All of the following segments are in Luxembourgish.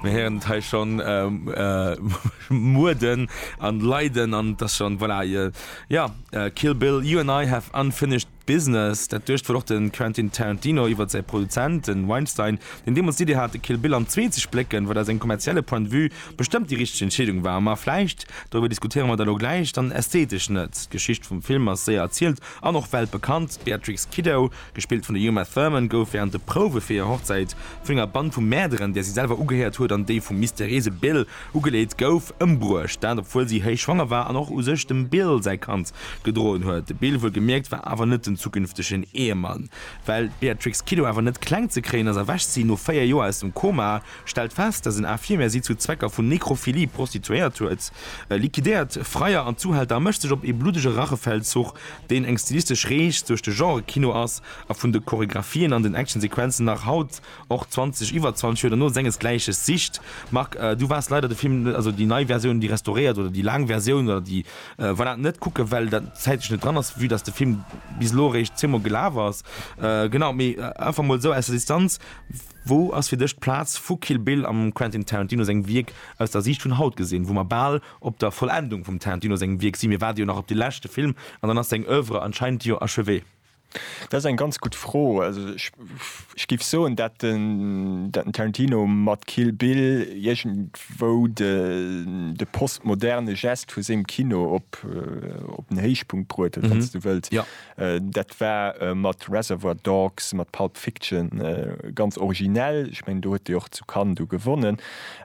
Mir héieren et hei schonn, Muerden an Leiden an et ass schonn, voilà, jo, Kill Bill, You and I have unfinished. Business, dat duecht wuel och de Quentin Tarantino iwwert säi Produzent, de Weinstein, deen deemools d'Iddi hat, de Kill Bill am Zwee ze splécken, wat aus engem kommerzielle Point de vue bestëmmt déi richteg Entscheedung war. Ma vläicht, doriwwer diskutéiere mer da lo gläich, dann ästheetesch net. D'Geschicht vum Film ass séier erzielt an och weltbekannt. D'Beatrix Kiddo, gespillt vun der Uma Thurman, gouf wärend de Prouwe fir hir Hochzäit vun enger Band vu Mäerderen, där si selwer ugehéiert huet, an déi vum mysteriéise Bill, Ugeleet gouf, ëmbruecht, dat obwuel si héich schwanger war an och u sech dem Bill säi Kand gedroen huet. De Bill, wuelgemierkt, war awer net den zukünftegen Ehemann. Well d'Beatrix Kiddo awer net kleng ze kréien ass, erwächt si no 4 Joer aus dem Koma, stellt fest, dass en Infirmier si zu Zwecker vun Nekrophilie prostituéiert huet, liquidéiert Freier an Zuhälter a mécht sech op ee bluddege Rachefeldzuch, deen eng stilistesch Rees duerch de Genre-Kino ass a vun de Choreographien an den Action-Sequenzen nach haut Och 20 iwwer 20 Joer duerno sengesgläiches sicht. Marc, du waars leider de Film, also déi nei Versioun, déi restauréiert oder déi laang Versioun oder déi, voilà, net kucken, well dat zäitlech net dran ass, vue dass de Film bis elo eréischt zweemol gelaf ass. Genau, mee einfach mol esou aus der Distanz, wou ass fir dech d'Plaz vu Kill Bill am Quentin Tarantino sengem Wierk aus der Siicht vun haut gesinn, wou mer bal op der Vollendung vum Tarantino sengem Wierk si? Mir waarde jo nach op de leschte Film an dann ass seng Oeuvre anscheinend jo achevé. Dat ass eng ganz gutt Fro. Also ech géif soen, dat den Tarantino mat Kill Bill iergendwou de postmoderne Gest vu sengem Kino op den Héichpunkt bruet huet, wann s du wëlls. Dat war mat Reservoir Dogs, mat Pulp Fiction ganz originell. Ech mengen, do huet e jo och zu Cannes du gewonnen.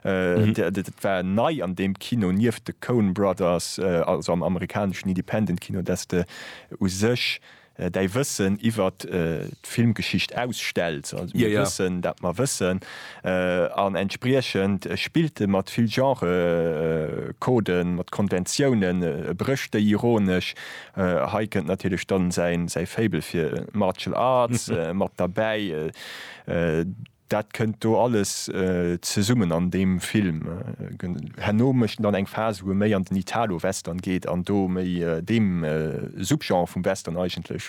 Dat war nei an deem Kino, nieft de Coen Brothers, also am amerikaneschen Independent-Kino, dass de u sech däi Wëssen iwwer d'Filmgeschicht ausstells. Also mir wëssen, dat mer wëssen an entspriechend spillt e mat vill Genre-Coden, mat Konventiounen, e brécht déi ironesch. Hei kënnt natierlech dann säi Faible fir Martial Arts mat derbäi. Dat kënnt do alles zesummen an deem Film. Herno mécht en dann eng Phas, wou e méi an den Italo-Western geet an do méi deem Subgenre vum Western eigentlech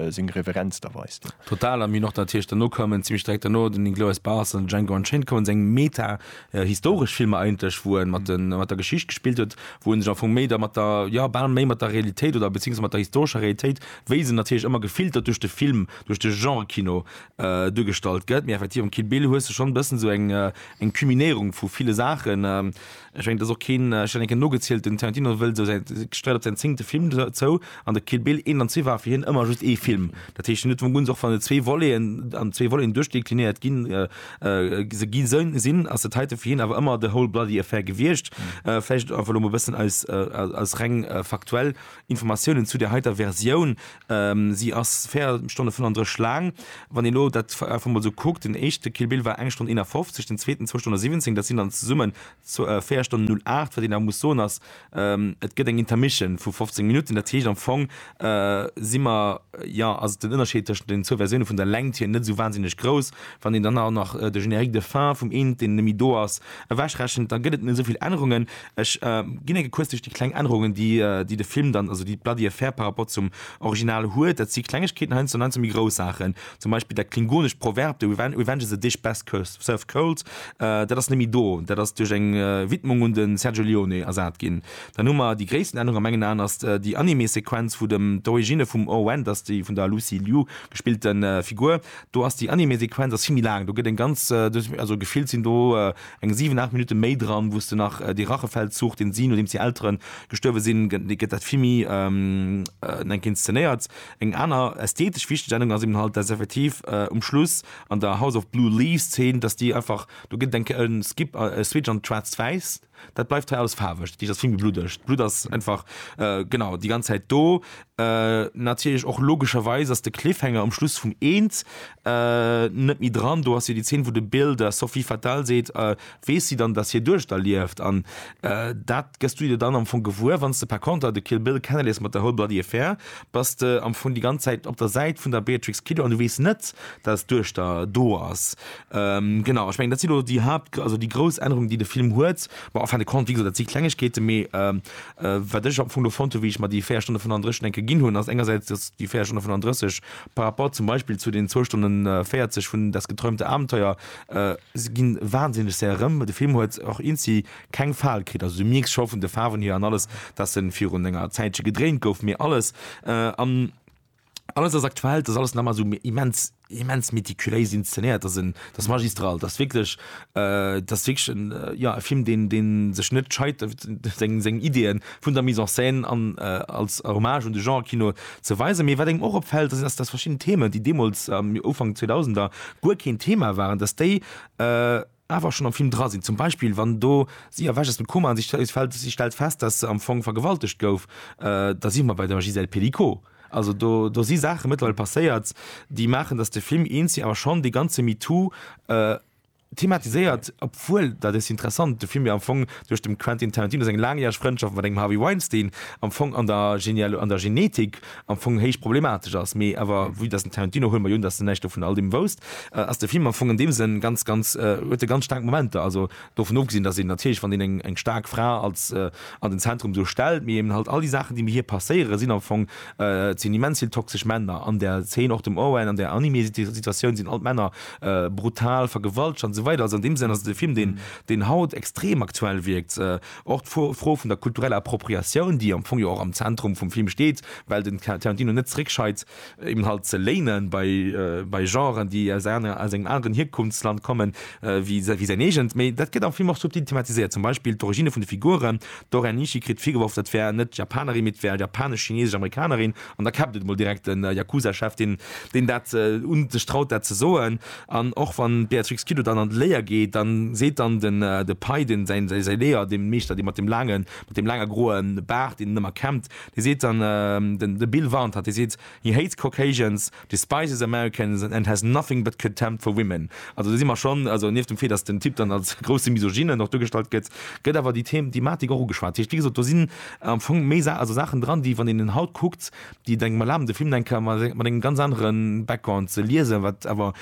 seng Reverenz da weist. Total, a mir hunn och dann natierlech derno koumen, zimlech direkt derno, den Inglourious Basterds an Django Unchained koumen, seng meta-historesch Filmer eigentlech, wou e mat der Geschicht gespillt huet, wou e sech am Fong méi da mat der, jo, bal méi mat der Realitéit oder beziéiungsweis mat der historescher Realitéit, wéi se natierlech ëmmer gefiltert duerch de Film, duerch de Genre-Kino, äh, dugestallt gëtt. Mir effektiv am Kill Bill hues du schon bëssen so eng äh, eng Kuminierung vu viele Sachen. Ähm, ich mein, das och keen äh, schon enke nogezielt den Tarantino wëll so se gestreit op sein zingte Film zou an der Kill Bill 1 an 2 war fir hien ëmmer just ee Film. Dat heescht net vum Gunz och van de zwee Voleen an zwee Voleen duerchdeklinéiert ginn äh, äh, se gi sënn sinn ass dat heite fir hien awer ëmmer de whole bloody affair gewiecht. Äh, vläicht einfach lo mol bëssen aus, äh, aus reng äh, faktuell Informatiounen zu där heiter Versioun, si ass 4 Stonne 35 laang. Wann een elo dat einfach emol esou kuckt, den éischte Kill Bill war eng Stonn 51, den zweeten zwou Stonne 17, dat sinn dann zesummen 4 Stonnen 08. Wat een awer muss soen ass, et gëtt eng Intermission vu 15 Minutten, dat heescht am Fong si mer, jo ass den Ënnerscheed tëschent den zwou Versioune vun der Längt hier net esou wahnsinneg grouss. Wann een dann awer nach de Générique de fin vum eent, deen net méi do ass, ewechrechent, da gëtt et net esou vill Ännerungen. Ech ginn enke kuerz duerch déi kleng Ännerungen, déi de Film dann, also déi d'Bloody Affair par rapport zum Original huet. Dat si Klengegkeeten heiansdo an heiansdo méi grouss Saachen. Zum Beispill dat klingonescht Proverb The revenge is a dish best served cold, dat ass net méi do. Dat ass duerch eng Widmung un de Sergio Leone ersat ginn. Dann hu mer déi gréissten Ännerung a mengen Aen ass déi Anime-Sequenz, wou dem d'Origine vum Oh Wen, dat ass déi vun der Lucy Liu gespillte Figur, do ass déi Anime-Sequenz ass vill méi laang. Do gëtt eng ganz, also gefillt sinn do, Eng 7, 8 Minutte méi dran, wou s de nach dee Rachefeldzug, deen si, nodeems hir Eltere gestuerwe sinn, déi gëtt dat vill méi eng Kéier inszenéiert. Eng aner ästhetesch wichteg Ännerung ass eben halt, dass effektiv um Schluss an der House of Blue Leaves Zeen, dass déi einfach, do gëtt et eng Kéier e Skip, e Switch an d'Schwaarzt Wäiss, dat bleift hei alles faarweg. Dat heescht, ass vill méi bluddeg. D'Blutt ass einfach, genau, déi ganz Zäit do. Natierlech och logescherweis ass de Cliffhanger um Schluss vum Eent net méi dran. Do ass jo déi Zeen, wou de Bill der Sophie Fatal seet, weess si dann, datt hie Duechter lieft? An dat gëss du dir dann am Fong gewuer, wann s de par conter de Kill Bill kennelees mat der Whole Bloody Affair. Bass de am Fong déi ganz Zäit op der Säit vun der Beatrix Kiddo an du weess net, datt d'Duechter do ass. Genau, ech mengen, dat si lo déi Haapt-, also déi grouss Ännerungen, déi de Film huet. Bon, en fin de compte, wéi gesot, dat si Klengegkeeten, mee Wat ech am Fong do fonnt hu wéi ech mer déi 4 Stonne 35 enke ginn hunn, ass engersäits, datt déi 4 Stonne 35 par rapport zum Beispill zu den zwou Stonne 40 vun Das geträumte Abenteuer, se gi wahnsinneg séier erëm. De Film huet och inci keng Fal kritt. Also du mierks scho vun de Faarwen hier an alles, datt e virun enger Zäitche gedréint gouf, mee alles an. alles ass aktuell, dass alles nach mal so immens, immens méticuléis inszeniert, dass en, dass magistral, dass wierklech, äh, dass wierklech en, äh, ja, e Film, deen, deen sech net scheit, seng, seng Ideen vun der Mise en scène an, äh, als Hommage un de Genre-Kino ze weisen. Mee wat engem och opfällt, ass, dass verschidden Themen, déi deemools am Ufank 2000er guer keen Thema waren, dass déi, äh, awer schonn am Film dra sinn, zum Beispill wann do si erwächt aus dem Koma an si stellt fest, si stellt fest dass se am Fong vergewaltegt gouf, da si mer bei der Gisèle Pelicot. Also do do si Saache mëttlerweil passéiert, déi maachen dass de Film eens si awer schonn dee ganze MeToo thematiséiert, obwuel, dat ass interessant, de Film jo am Fong duerch dem Quentin Tarantino seng laangjäreg Frëndschaft mat engem Harvey Weinstein am Fong an der an der Genetik am Fong héich problematesch ass, mee awer vue dass den Tarantino, huele mer jo un dass en näischt dovun all deem wousst, ass de Film am Fong an deem Sënn ganz ganz, huet e ganz staark Momenter, also dovun ofgesinn dass een natierlech wann een eng eng staark Fra als an den Zentrum esou stellt, mee eben halt all déi Saachen déi mat hir passéiere sinn am Fong, et sinn immens vill toxesch Männer an där Zeen, och dem Owen an där Anime-Situatioun sinn all d'Männer brutal vergewaltegt an esou weider, also an deem Sënn ass et e Film deen deen haut extrem aktuell wierkt, Och d'Fro vun der kultureller Appropriatioun, déi am Fong jo och am Zentrum vum Film steet, well den Tarantino net zréckscheit, eben halt ze léinen bei Genren, déi aus engem aneren Hierkunftsland kommen wéi säin eegent. Mee dat gëtt am Film och subtil thematiséiert, zum Beispill d'Originne vun de Figuren. D'Oren Ishii kritt virgeworf, dat wär net Japanerin, mee et wär japanesch, chinesesch, amerikanerin. An da käppt et emol direkt de Yakuza-Chef, deen dat un sech traut, dat ze soen. An och wann d'Beatrix Kiddo dann an d'Léier geet, dann seet dann den de Pei, den säin säi Léier, dee Meeschter, dee mat dem laange mat dem laange groe Baart, deen en ëmmer kämmt, dee seet dann den de Bill warnt hatt, dee seet, He hates Caucasians, despises Americans and has nothing but contempt for women. Also do si mer schonn, also nieft dem Fait, datt den Typ dann als grousse Misogynen och duergestallt gëtt, gëtt awer déi Thematik och ugeschwat. Dat heescht, wéi gesot, do sinn am Fong méi Sa also Saachen dran, déi, wann een en haut kuckt, déi engem erlaben de Film eng Kéier mat mat engem ganz anere Background ze liesen, wat awer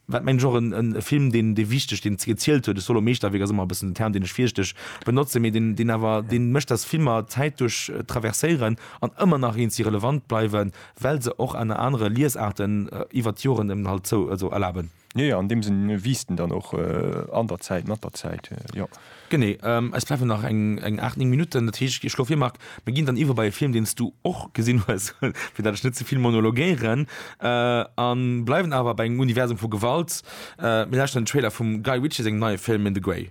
wat mengen ech och en en Film deen dee wichteg deen ze gezielt huet, ech soll lo Meeschterwierk ass ëmmer e bëssen en Term deen ech virsiichteg benotzen, mee deen deen awer deen mécht datt Filmer d'Zäit duerch traverséieren an ëmmer nach eens si relevant bleiwen, well se och aner anere Liesaarten iwwert d'Joren en halt zou also erlaben. Jo, jo, an deem Sënn wiisst en dann och an der Zäit, mat der Zäit, jo. Genee. Eis bleiwen nach eng aacht, néng Minutten. Dat heescht, ech schloe vir, Marc, mir ginn dann iwwer bei e Film, deen s du och gesinn hues, fir dat ech net ze vill monologéieren, a bleiwen awer bei engem Universum vu Gewalt. Mir lauschteren den Trailer vum Guy Ritchie sengem neie Film In the Grey.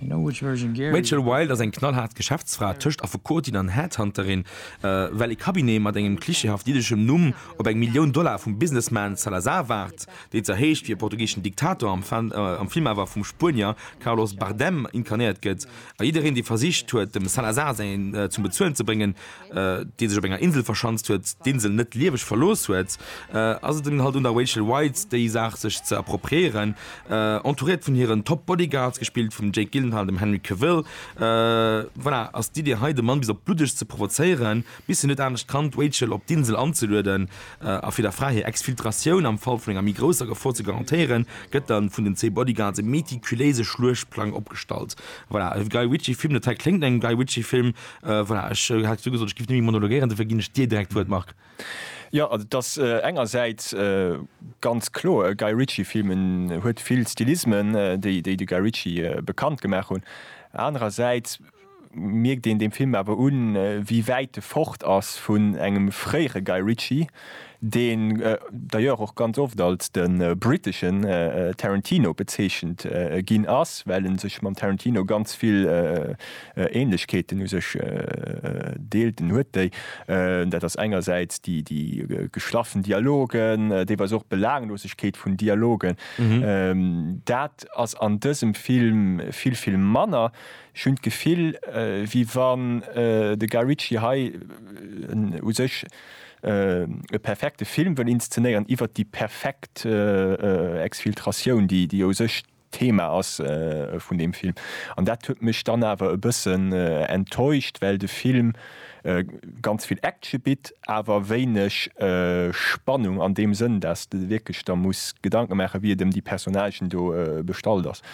D'Rachel Wilde ass eng knallhaart Geschäftsfra tëscht Affekotin an Headhunterin, well ee Cabinet mat engem klischeehaft jiddeschem Numm op eng Millioun Dollar vum Businessman Salazar waart, deen zwar heescht wéi e portugiseschen Diktator, am Film awer vum Spuenier Carlos Bardem inkarnéiert gëtt, a jiddereen, dee versicht huet, dem Salazar säin zum Bezuelen ze bréngen, dee sech op enger Insel verschanzt huet, d'Insel net lieweg verlooss huet, ass et dunn halt un der Rachel Weisz déi Saach sech ze appropriéieren. Entouréiert vun hiren Top Bodyguards, gespillt vum Jake Gyllenhaal an dem Henry Cavill, voilà, ass d'Idee hei de Mann bis op d'Bluddegst ze provozéieren, bis hien net anescht kann, d'Rachel op d'Insel anzelueden, a fir der Fra hir Exfiltratioun am Fall vun enger méi grousser Gefor ze garantéieren, gëtt da vun den zwee Bodyguards e meticuléise Schluechtplang opgestallt. Voilà, e Guy Ritchie Film, dat hei kléngt no engem Guy Ritchie Film, Voilà, ech hat jo gesot, ech géif net méi monologuéieren, dofir ginn ech dir direkt d'Wuert, Marc. Jo, also et ass engersäits ganz kloer e Guy Ritchie Film, en huet vill Stilismen, déi de Guy Ritchie bekannt gemaach hunn. Anerersäits mierkt een deem Film awer un, wéi wäit e fort ass vun engem fréiere Guy Ritchie. deen d'ailleurs och ganz oft als de briteschen Tarantino bezeechent ginn ass, well e sech mam Tarantino ganz vill Ähnlechkeeten u sech deelt, en huet déi, dat ass engersäits déi geschlaffen Dialogen, deelweis och d'Belaanglosegkeet vun Dialogen, dat ass an dësem Film vill, vill manner. Ech hunn d'Gefill, wéi wann de Guy Ritchie hei u sech e perfekte Film wëll inszenéieren iwwert déi perfekt Exfiltratioun, déi u sech d'Thema ass vun deem Film. An dat huet mech dann awer e bëssen enttäuscht, well de Film ganz vill Action bitt, awer wéineg Spannung an deem Sënn, dass de wierklech der muss Gedanke maachen, wéi et ëm déi Personnagen do bestallt ass.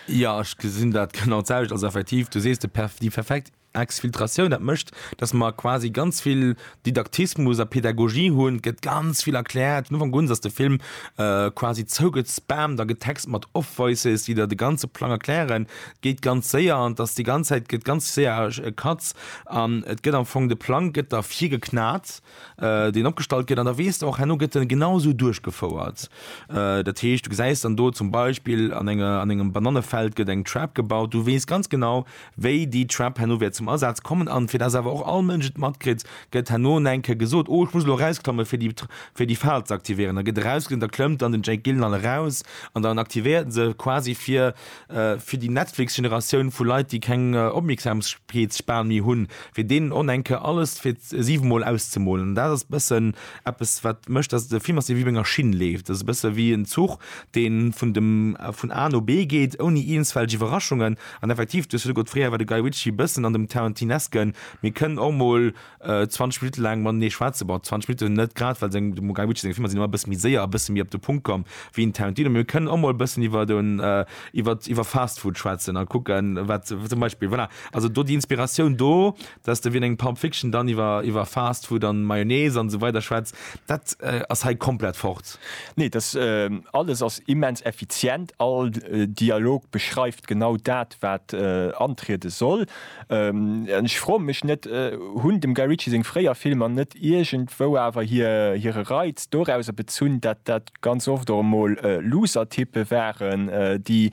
Jo, ech gesinn dat genau d'selwecht. Also effektiv, du sees, déi perfekt Exfiltratioun, dat mécht, datt mer quasi ganz vill Didaktismus a Pedagogie hunn, et gëtt ganz vill erkläert. Vun Ufank un ass de Film quasi zougespammt a getext mat Off-Voices, déi der de ganze Plang erklären. Et geet ganz séier an et ass déi ganz Zäit gëtt ganz séier Cuts an et gëtt am Fong, de Plang gëtt der virgeknat, deen opgestallt gëtt an da weess de och, herno gëtt en genau esou duerchgefouert. Dat heescht, du gesäis dann do zum Beispill an enger, an engem Banannefeld gëtt eng Trap gebaut, du weess ganz genau, Wéi déi Trap herno wäert zum Asaz kommen an fir dass awer och all Mënsch et matkritt, gëtt herno en enke gesot, Oh, ech muss elo erausklammen, fir déi fir déi Fal ze aktivéieren. Da gëtt erausgeklammt, da klëmmt dann den Jake Gyllenhaal eraus an dann aktivéiert en se quasi fir fir déi Netflix-Generatioun vu Leit, déi keng Opmierksamkeetsspan méi hunn, fir deenen en enke alles fir siwemol auszemolen. An dat ass e bëssen eppes, wat mécht, dass de Film ass, dee wéi op enger Schinn leeft. Dat ass e bësse wéi en Zuch, dee vun dem vun A no B geet, ouni iergendswelch Iwwerraschungen. An effektiv, du hues virdru gesot, fréier war de Guy Ritchie bëssen an dem Tarantinesken, mee kënn och mol 20 Minutte laang matenee schwätzen. Bon, 20 Minutte net grad, well seng, dem Guy Ritchie seng Filmer sinn ëmmer e bësse méi séier a bësse méi op de Punkt komm wéi en Tarantino, mee mir kënnen och mol e bëssen iwwer do, iwwer, iwwer Fast Food schwätzen a kucken, wat zum Beispill, voilà, also do déi Inspiratioun do, dass de wéi an engem Pulp Fiction dann iwwer iwwer Fast Food an Mayonnaise an esou weider schwätz, dat ass hei komplett fort. Nee, dass alles ass immens effizient, all Dialog beschreift genau dat wat antriede soll. An ech froe mech net, hunn dem Guy Ritchie seng fréier Filmer net iergendwou awer hire Reiz dorauser bezunn, dat dat ganz oft och emol looser Typpe waren, déi,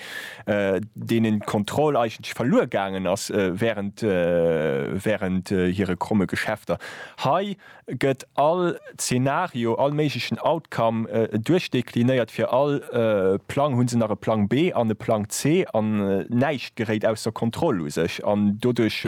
deenen d'Kontroll eigentlech verluer gaangen ass während, während hire kromme Geschäfter. Hei gëtt all Zeenario, all méiglechen Outcome duerchdeklinéiert. Fir all Plang hu se nach e Plang B an e Plang C an näischt geréit ausser Kontroll u sech an doduerch,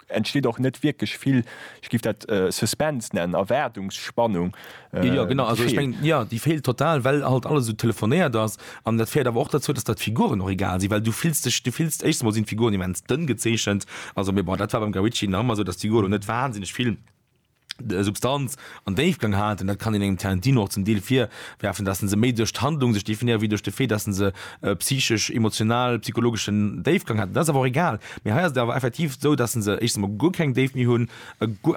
entsteet och net wierklech vill, ech giff dat Suspense nennen, Erwaardungsspannung, déi feelt. Jo, déi feelt total, well halt alles esou telefonéiert ass. An dat féiert awer och derzou, dass der d'Figuren och egal sinn, well du fills dech, du fills, éischtens emol sinn d'Figuren immens dënn gezeechent, also, mee bon, dat war beim Guy Ritchie nach ëmmer esou, dass d'Figur elo net wahnsinneg vill. Substanz an Déifgang haten, dat kann een engem Tarantino och zum Deel virwerfen, dass en se méi duerch d'Handlung sech definéiert wéi duerch de Fait, dass en se e psychesch, emotional, psychologeschen Déifgang hat. Dat ass awer och egal. Mee hei ass et awer effektiv esou, dass en se éischtens emol guer keng Déift méi hunn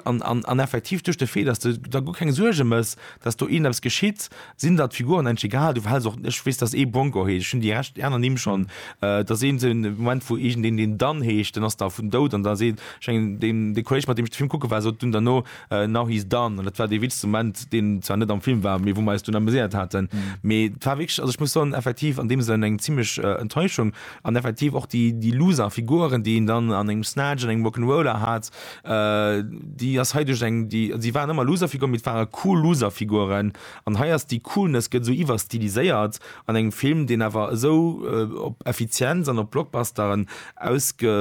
an effektiv duerch de Fait, dass s de der guer keng Suerge méchs, dass do iergendeppes geschitt, Sinn der d'Figuren engg egal? Du verhäls och, ech weess dass ee Bronco heescht, ech hunn déi Rescht, déi aner Nimm schonn, et ass een den Moment wou iergendeen deen Dan heescht, den ass da vun dout an da seet, ech mengen deen dee Kolleg mat deem ech de Film kucke war sot dunn derno Now he's Dan an dat war dee witzegste Moment deen zwar net am Film war mee wou mer eis dunn ameséiert haten. Mee et war wierklech, also ech muss soen effektiv an deem Sënn eng zimlech Enttäuschung an effektiv och déi déi Loser Figuren déi een dann an engem Snatch an engem Rock'n'Roller hat, Äh, déi ass hei duerch eng, déi, si waren ëmmer Loserfiguren, mee et ware cool Loserfiguren. An hei ass déi Coolness gëtt esou iwwerstiliséiert an engem Film, deen awer esou op Effizienz an op Blockbusteren ausge,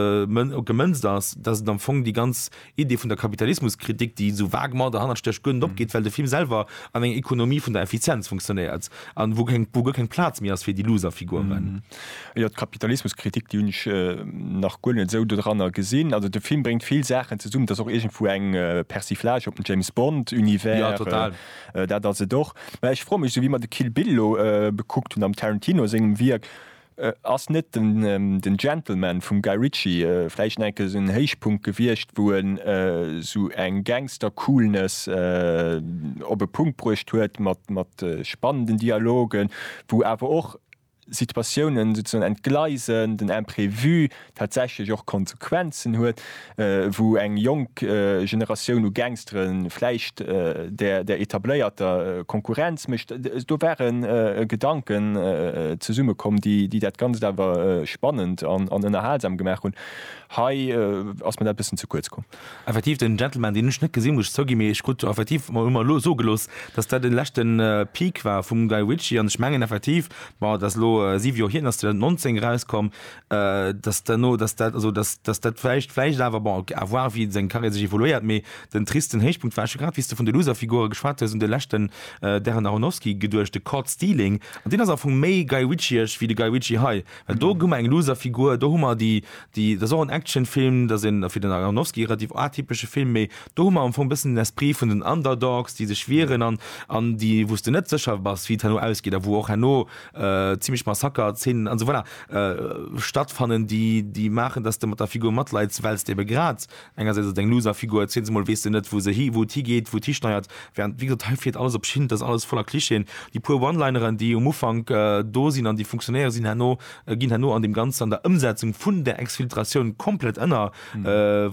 gemënzt ass, dass et am Fong déi ganz Idee vun der Kapitalismuskritik, déi esou vaguement derhannert stécht, guer net opgeet, well de Film selwer an enger Economie vun der Effizienz funktionéiert an wou keng, wou guer keng Plaz méi ass fir déi Loserfiguren. Jo, d'Kapitalismuskritik, déi hunn ech nach guer net esou doranner gesinn. Also de Film bréngt vill Saachen zesummen. Et ass och iergendwou eng Persiflage op den James Bond Univers. Jo, total. Dat ass et och. Mä ech froe mech, esou wéi mer de Kill Bill elo bekuckt hunn, am Tarantino sengem Wierk, ass net den Gentleman vum Guy Ritchie vläicht nach enke sou en Héichpunkt gewiescht, wou en sou eng Gangster-Coolness op e Punkt bruecht huet mat spannenden Dialogen, wou awer och Situatiounen souzesoen entgleisen, den Imprévu tatsächlech och Konsequenzen huet, wou eng jonk Generatioun u Gangstere vläicht der etabléierter Konkurrenz mécht. Do ware Gedanken zesummekomm, déi dat Ganzt awer spannend an ënnerhalsam gemaach hunn. Hei ass mir dat e bëssen ze kuerz komm. Effektiv den Gentleman deen hun ech net gesin muss ech zougin, mee ech krut effektiv hu mer elo soe gelooss dass dat den leschten Peak war vum Guy Ritchie an ech mengen effektiv, bon dat ass elo 7 Joer hir, ass 2019 eraus komm, dass duerno dass dat also dass dass dat vläicht vläicht awer bon à voir wéi seng Carrière sech evoluéiert, mee den tristen Héichpunkt war, ech hu grad wéi s de vun de Loserfigure geschwat hues un de leschten Darren Aronofsky geduecht, de Caught Stealing an deen ass am Fong méi Guy Ritchie'esch wéi de Guy Ritchie hei, Well do hu mer eng Loserfigur, do hu mer déi, déi, dat ass och en Actionfilm, dat ass een, fir den Aronofsky, relativ atypesche Film, mee do hu mer am Fong e bëssen den Esprit vun den Underdogs, déi sech wieren an, an déi, wou s de net sécher bass, wéi et herno ausgeet a wou och herno zimmlech Massaker-Zeenen an esou weider stattfannen, déi, déi maachen, datt s de mat der Figur matleids, well s de ebe grad Engersäits ass et eng Loserfigur, zweetens emol weess de net, wou se hi, wou et higeet, wou et histeiert. Während, wéi gesot, hei fiert alles op Schinn, et ass alles voller Clichéen. Déi puer One-Lineren, déi um Ufank do sinn an déi funktionéiere, sinn herno, ginn herno an deem Ganzen, an der Ëmsetzung vun där Exfiltratioun komplett ënner.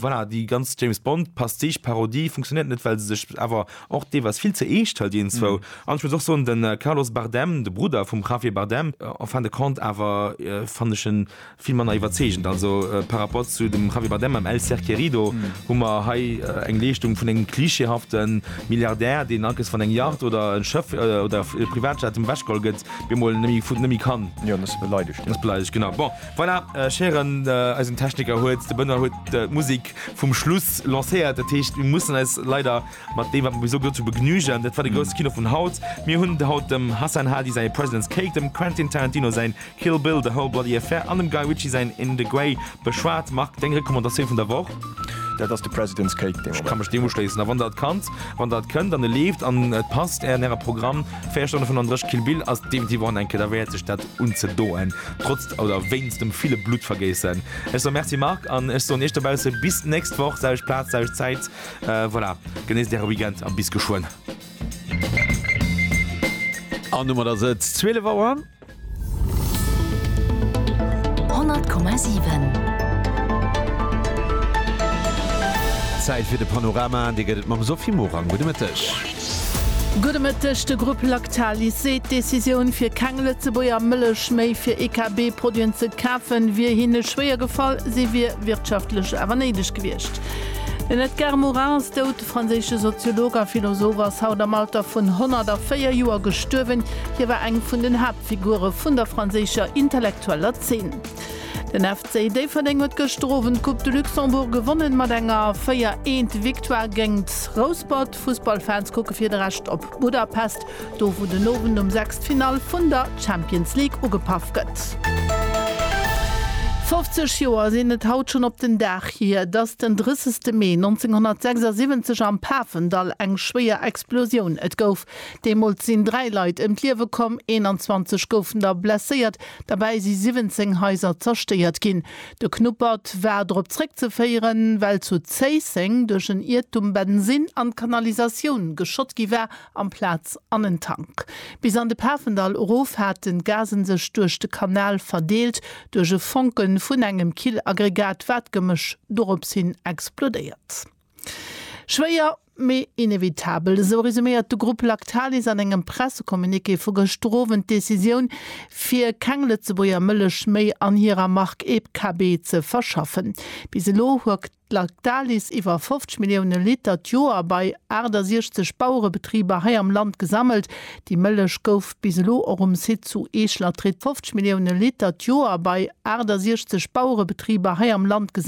Voilà, déi ganz James-Bond-Pastiche-Parodie funktionéiert net, well se sech awer och deelweis vill ze eescht hëlt ienzwou. An ech muss och soen, de Carlos Bardem, de Brudder vum Javier Bardem, en fin de compte awer, fannen ech en, Vill manner iwwerzeegend also par rapport zu dem Javier Bardem mam El ser querido hu mer hei eng Leeschtung vun engem klischeehafte Milliardär, deen alkes wann eng Yacht oder e Schëff oder e Privatjet him ewechgeholl gëtt, bemol nëmme kann. Jo, ass beleidegt ginn. Ass beleidegt, genau. Bon, voilà, ech héieren, eisen Techniker huet, de Benoît huet d'Musek vum Schluss lancéiert. Dat heescht, mir mussen eis leider Mat deem wat mer bis elo gesot hu begnügen. Dat war de grousse Kino vun haut. Mir hunn haut dem Hassan Hadi säi President's Cake, dem Quentin Tarantino säin Kill Bill, The Whole Bloody Affair an dem Guy Ritchie säin In the Grey beschwat. Marc, deng Recommandatioun vun der Woch? Dat ass de President's Cake dee Moment. Ech ka mech deem uschléissen. A wann der et kannt, wann der et kënnt an e leeft an et passt an äre Programm, véier Stonne vun an dräch, Kill Bill ass definitiv och an eng Kéier derwäert sech dat unzedoen, trotz oder wéinst dem ville Bluttvergéissen. Ech soe Merci Marc an ech soen iech dobausse bis d'nächst Woch, selwecht Plaz, selwecht Zäit. Voilà, genéisst äre Weekend a bis geschwënn! An domat ass et 12 Auer. 100,7. Zäit fir de Panorama, dee gëtt et mam Sophie Morang. Gudde Mëtteg. Gudde Mëtteg. De Grupp Lactalis seet, d'Decisioun, fir keng Lëtzebuerger Mëllech méi fir EKB-Produiten ze kafen, wier hinne schwéier gefall. Si wier wirtschaftlech awer néideg gewiescht. Den Edgar Morin ass dout. De franséische Soziolog a Philosoph ass haut am Alter vun 104 Joer gestuerwen. Hie war eng vun den Haaptfigure vun der franséischer intellektueller Zeen. Den FC Déifferdeng huet gëschter Owend d'Coupe de Luxembourg gewonnen, mat enger 4 Eent Victoire géingt Rouspert. D'Fussballfans kucke fir de Rescht op Budapest, do wou den Owend um 6 d'Finall vun der Champions League ugepaff gëtt. 50 Joer sinn et haut schonn op den Dag hir, datt den 30 Mee 1976 am Pafendall eng schwéier Explosioun et gouf. Deemools sinn 3 Leit ëm d'Liewe komm, 21 goufen der blesséiert, derbäi si 17 Haiser zerstéiert ginn. De Knuppert war drop zréckzeféieren, well zu Zéisseng duerch en Iertum Bensin an d'Kanalisatioun geschott gi war amplaz an en Tank. Bis an de Pafendall erof haten d'Gasen sech duerch de Kanal verdeelt, duerch e Fonke vun engem Killaggregat war d'Gemësch doropshin explodéiert. Schwéier, mee inevitabel, esou resuméiert de Grupp Lactalis an engem Pressecommuniqué vu gëschter Owend d'Decisioun, fir keng Lëtzebuerger Mëllech méi an hirer Mark EbKb ze verschaffen. Bis elo huet Lactalis iwwer 50 Millioune Liter d'Joer bei 68 Bauerebetriber hei am Land gesammelt. Déi Mëllech gouf bis elo och um Site zu Eech-Latritt 50 Millioune Liter d'Joer bei 68 Bauerebetriber hei am Land gesammelt.